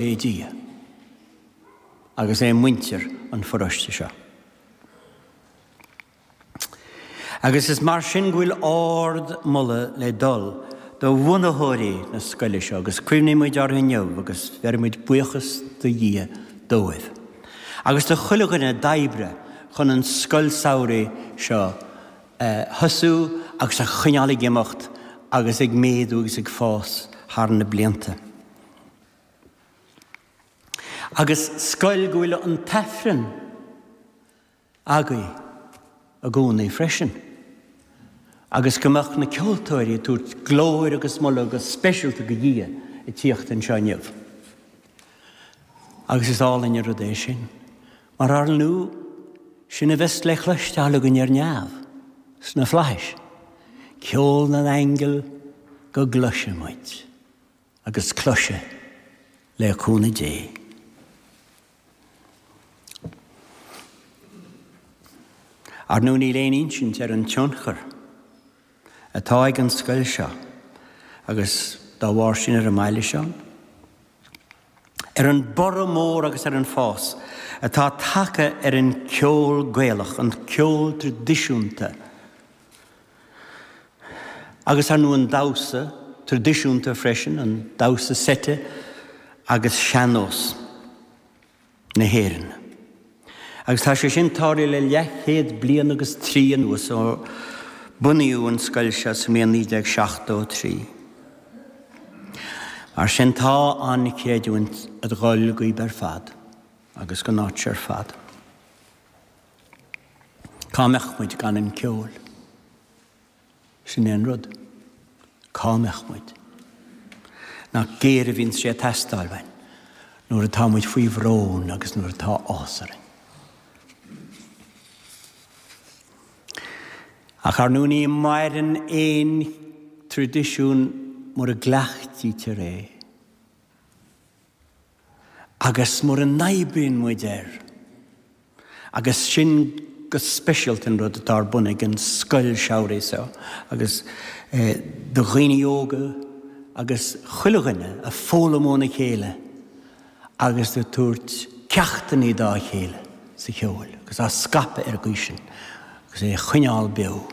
é Dia agus é muintir an pharóiste seo. Agus is mar sin go bhfuil ard moladh le dul do bhunaitheoirí na scoile seo agus cuimhnímid orthu inniu agus bheirimid buíochas do Dhia dóibh agus do chuile dhuine a d'oibrigh chun an scoil samhraidh seo a thosú agus a choinneáil ag imeacht agus ag méadú agus ag fás thar na blianta. agus is cóir go bhfuil an tAifreann againn i gcónaí freisin, agus go mbíonn na ceoltóirí ag tabhairt glóir agus moladh go speisialta go Dhia a tíocht anseo inniu. Agus is álainn an rud é sin, mar ar ndú, sin a bheas le cloisteáil againn ar neamh, sna flaithis, ceol na n-aingeal go gcloisfidh muid. agus cloisfidh, le cúnamh Dé. Ar ndú níl aon insint ar an tionchar atá ag an scoil seo agus dá bharr sin ar an mbaile seo, ar an borradh mór agus ar an fás atá tagtha ar an gceol Gaelach, an ceol traidisiúnta, agus ar ndú an damhsa traidisiúnta freisin, an damhsa seite agus sean-nós na hÉireann. Agus tá sé sin tarlaithe le leathchéad bliain agus trí anuas ó bunaíodh an scoil seo sa mbliain 1973. Mar sin tá an chreidiúint ag dul dhaoibh ar fad agus dhon áit ar fad. Cá mbeadh muid gan an ceol? Sin é an rud. Cá mbeadh muid? Nach géar a bhíonns sé ag teastáil uainn nuair atá muid faoi bhrón agus nuair atá áthas orainn. Ach ar ndú ní maireann aon traidisiún mura gcleachtaítear é. Agus mura n-oibríonn muid air, agus sin go speisialta an rud atá ar bun ag an scoil samhraidh seo, agus do dhaoine óga agus chuile dhuine ag foghlaim óna chéile agus ag tabhairt ceachtanna dá chéile sa gceol agus á scaipeadh ar an gcaoi sin agus é a choinneáil beo.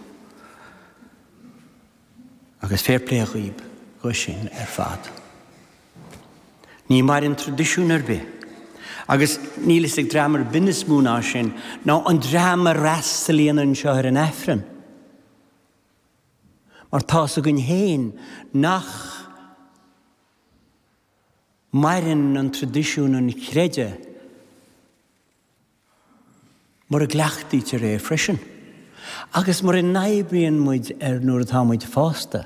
Agus fair play dhaoib dó sin ar fad. Ní maireann traidisiún ar bith, agus níl fhios ag dream ar bith níos mó ná sin, ná an dream a fhreastalaíonn anseo ar an Aifreann. Mar tá a fhios againn féin nach maireann an traidisiún an chreidimh. mura gcleachtaítear é freisin, agus mura n-oibríonn muid air nuair atá muid fásta,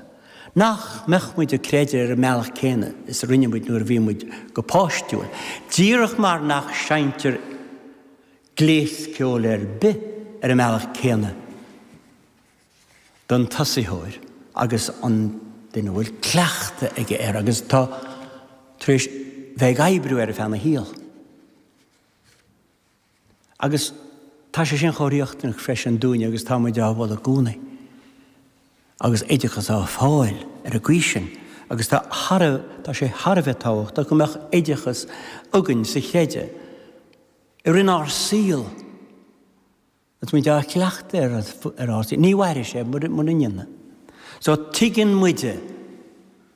nach mbeadh muid ag creideamh ar an mbealach céanna is a rinne muid nuair a bhí muid go páistiúil, díreach mar nach seinntear gléas ceoil ar bith ar an mbealach céanna don tosaitheoir agus an duine a bhfuil cleachtadh aige air agus atá tar éis bheith ag oibriú air feadh a shaol. Agus tá sé sin chomh riachtanach freisin dúinn agus tá muid ag foghlaim i gcónaí agus oideachas á fáil ar an gcaoi sin agus tá tá sé thar a bheith tábhachtach go mbeadh oideachas againn sa chreideamh i rith ár saol Agus muid á chleachtadh ar ndóigh, ní mhairfidh sé mura ndéanann. So tuigeann muide,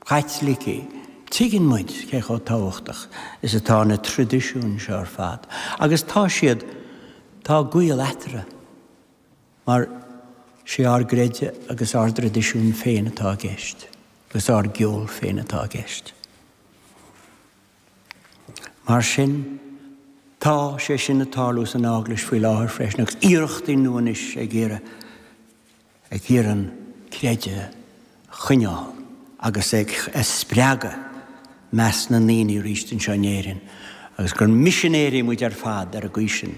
Caitlicigh, tuigeann muid cé chomh tábhachtach is atá na traidisiúin seo ar fad. Agus tá siad, tá gaol eatarthu mar sé ár gcreideamh agus ár dtraidisiún féin atá i gceist, agus ár gceol féin atá i gceist. Mar sin, tá sé sin ag tarlú san Eaglais faoi láthair freisin, agus iarrachtaí nua anois ag iarraidh ag iarraidh an creideamh a choinneáil agus ag a spreagadh i measc na ndaoine arís anseo in Éirinn, agus gur misinéirí muid ar fad ar an gcaoi sin,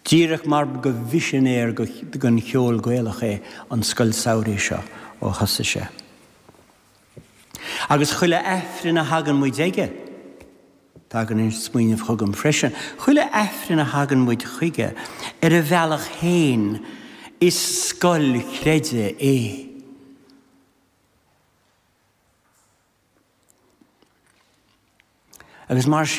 díreach mar ba mhisinéir don cheol Gaelach é an Scoil Samhraidh seo ó thosaigh sé. Agus chuile Aifreann a thagann muid aige, tagann an smaoineamh chugam freisin, chuile Aifreann a thagann muid chuige ar a bhealach féin, is scoil chreidimh é. Agus mar sin,